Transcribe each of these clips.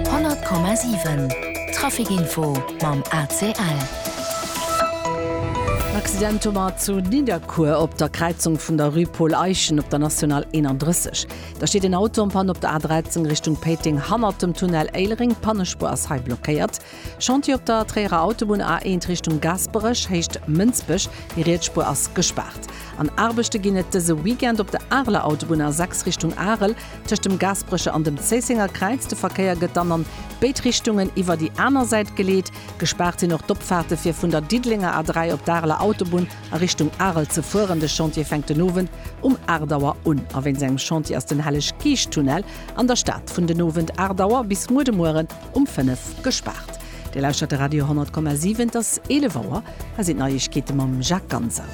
100,7 Traficinfo mam ACL. En Accident hu mer zu Nidderkuer op der Kräizung vun der Rue Paul Eyschen op der National 31. Da steet en Auto en Panne op der A 13 Richtung Péiteng hannert dem Tunnel Éilereng. D'Pannespuer ass hei blockéiert. Chantier op der Tréierer Autobunn A eent Richtung Gasperech, héicht Mënsbech, déi Rietsspuer ass gespaart. An Aarbechte ginn et dëse Weekend op der Areler Autobunn A 6 Richtung Arel, tëscht dem Gasperecher an dem Zéissenger Kräiz. De Verkéier gëtt dann an béid Richtungen iwwer déi aner Säit geleet. Gespaart sinn och d'Opfaarte fir vun der Diddelenger A3 op d'Areler Autobunn a Richtung Arel ze fueren. De Chantier fänkt den Owend um 8 Auer un. A wéinst engem Chantier ass den Helleg-Geescht-Tunnel an der Stad vun den Owend 8 Auer bis muer de Mueren um 5 gespaart. Dir lauschtert de Radio 10,7, et ass 11 Auer. Hei sinn d'Neiegkeete mam Jacques Ganser.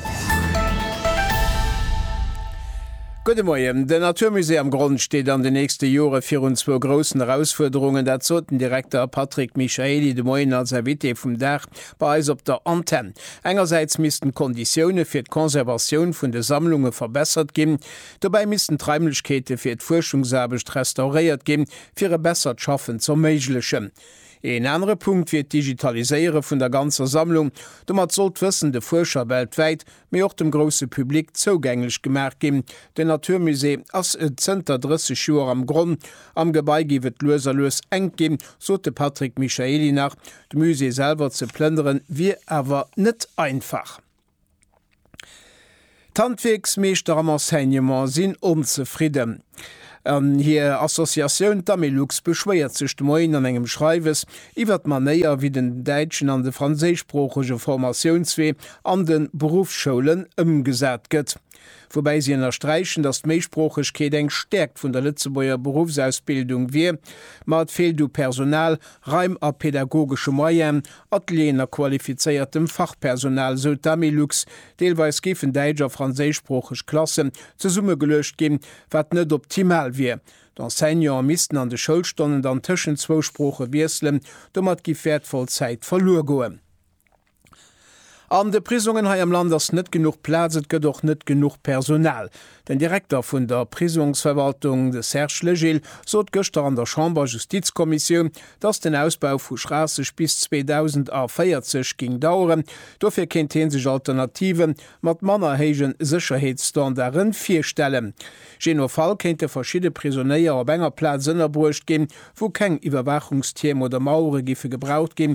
Gudde Moien. Den Naturmusée am Gronn steet an den nächste Jore virun zwou groussen Erausfuerderungen. Dat sot den Direkter Patrick Michaely de Moien als Invité vum Dag bei eis op der Antenn. Engersäits missten d'Konditioune fir d'Conservatioun vun de Sammlunge verbessert ginn. Dobäi missten d'Raimlechkeete fir d'Fuerschungsaarbecht restauréiert ginn, fir e bessert Schaffen z'erméiglechen. Een anere Punkt wier d'Digitaliséiere vun der ganzer Sammlung. Domat soll d'Wëssen de Fuerscher weltwäit, mee och dem grousse Public zougänglech gemaach ginn. Den Naturmusée ass zënter 30 Joer am Gronn, am Gebai géif et lues a lues enk ginn, sot de Patrick Michaely nach. De Musée selwer ze plënnere wier awer net einfach. D'Handwierksmeeschter am Enseignement sinn onzefridden. An hir Associatioun D'Amelux beschwéiert sech de Moien an engem Schreiwes iwwer d'Manéier, wéi den däitschen an de franséischsproochege Formatiounswee an de Beruffsschoulen ëmgesat gëtt. Woubäi si ënnersträichen, datt d'Méisproochegkeet eng Stäerkt vun der Lëtzebuerger Beruffsausbildung wier, ma et feelt u Personal, Raim a pedagogesche Moyenen, Atelieren a qualifizéiertem Fachpersonal, esou d'Amilux. Deelweis géifen däitsch a franséischsproocheg Klassen zesummegeluecht ginn, wat net optimal wier. D'Enseignante missten an de Schoulstonnen dann tëschent zwou Sprooche wiesselen, domat giff wäertvoll Zäit verluer goen. An de Prisongen hei am Land ass net genuch Plaz, et gëtt och net genuch Personal. Den Direkter vun der Prisongsverwaltung, de Serge Legil, sot gëschter an der Chamber Justizkommissioun, datt den Ausbau vu Schraasseg bis 2040 géing daueren. Dofir kéint hie sech Alternative mat manner héije Sécherheetsstandarde virstellen. Jee no Fall kéinte verschidde Prisonéier op enger Plaz ënnerbruecht ginn, wou keng Iwwerwaachungstierm oder Mauere giffe gebraucht ginn,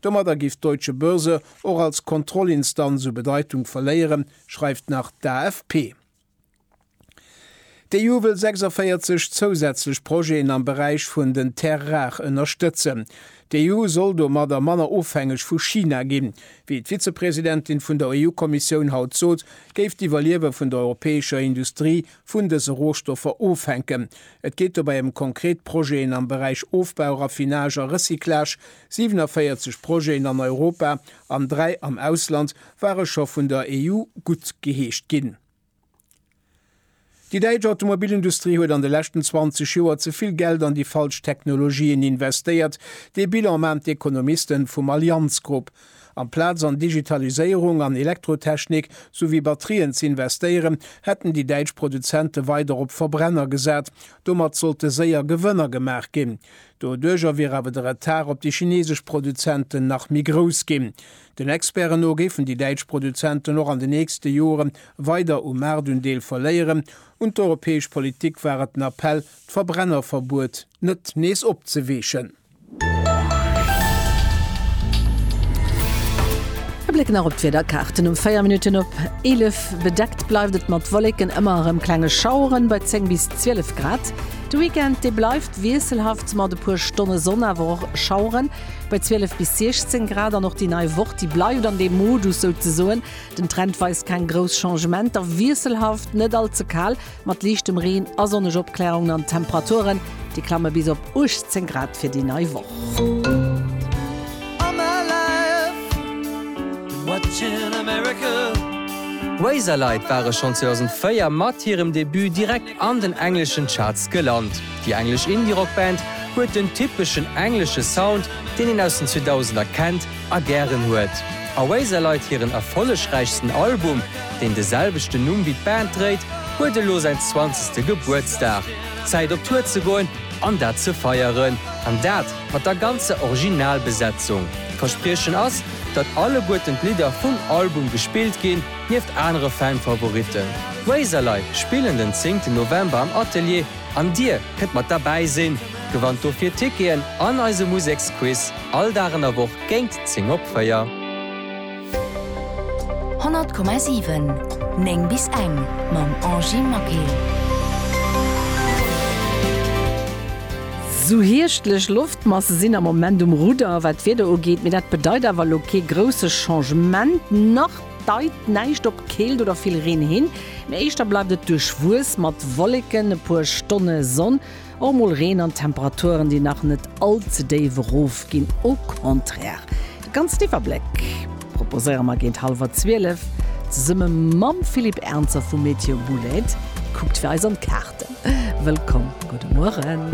Domadder giff d'Deutsche Börse och als Kontrollinstanz u Bedeitung verléieren, schreift nach d'AFP. D'EU wëll 46 zousätzlech Projeten am Beräich vun den Terres rares ënnerstëtzen. D'EU soll domadder manner ofhängeg vu China ginn. Wéi d'Vizepresidentin vun der EU-Kommissioun haut sot, géif d'Iwwerliewe vun der europäescher Industrie vun dëse Rohstoffer ofhänken. Et geet dobäi ëm konkret Projeten am Beräich Ofbau, Raffinage a Recyclage, 47 Projeten an Europa an dräi am Ausland ware scho vun der EU guttgeheescht ginn. Déi däitsch Automobilindustrie huet an de leschten 20 Joer ze vill Geld an déi falsch Technologien investéiert. Dee Bilan maachen d'Ekonomisten vum Allianz Group. Amplaz an Digitaliséierung an Elektrotechnik souwéi Batterien ze investéieren, hätten déi däitsch Produzente weider op Verbrenner gesat. Domat sollte séier Gewënner gemaach ginn. Doduerjer wier awer de Retard op déi chinesesch Produzenten nach méi grouss ginn. Den Experten no géifen déi däitsch Produzenten och an den nächste Jore weider u Maartundeel verléieren. Un d'europäesch Politik war et den Appell, d'Verbrennerverbuet net nees opzeweechen. E Bléck nach op d'Wiederkaarten, Um 4 Minutten op 11 bedeckt bleift et mat Wolleken, ëmmer erëm klenge Schaueren bei 10 bis 12 Grad. De Weekend dee bleift wiesselhaft mat e puer Stonne Sonn, awer och Schaueren bei 12 bis 16 Grad. An och déi nei Woch, déi bleift an deem Modus souzesoen. Den Trend weist keng grouss Changementer, wiesselhaft, net all ze kal mat liichtem Reen a sonneg Opklärungen an d'Temperaturen, déi klamme bis op 18 Grad fir déi nei Woch. an den engleschen Charts gelant. Déi englesch Indie-Rock-Band huet den typeschen englesche Sound, deen een aus den 2000er kennt a gären huet. Oasis leit hiren erfollegräichsten Album, deen de selwechten Numm wéi d'Band dréit, huet elo säin zwanzegste Gebuertsdag. Zäit op Tour ze goen an dat ze feieren. An dat mat der ganzer Originalbesetzung. D'Verspriechen ass, datt alleguerten d'Lidder vum Album gespillt ginn. Nieft anere Fan-Favoritten, Razorlight spillen den 10 November am Atelier an dir kënnt mat derbäi sinn. Gewannt dofir Ticketen an eise Museksquiz all Dag an der Woch géint 10 op 4. 100,7, 9 bis eng mam Angy Maquet. Sou hierschtlech Loftmasse sinn am Moment um Rudder, wat d'Wieder ugeet, mee dat bedeit awer elo kee grousse Changement. Nach Deit näischt op Keelt oder vill Reen hin, mee éischter bleift et duerchwuess mat Wolleken, e puer Stonne Sonn, och mol Reen an Temperaturen, déi nach net all ze déif erof ginn. Au contraire, de ganzen Iwwerbléck proposéiere mer géint hallwer 12 zesumme mam Philippe Ernzer vu Météo Boulaide. Kuckt fir eis an d'Kaarten. Wëllkomm, gudde Mueren.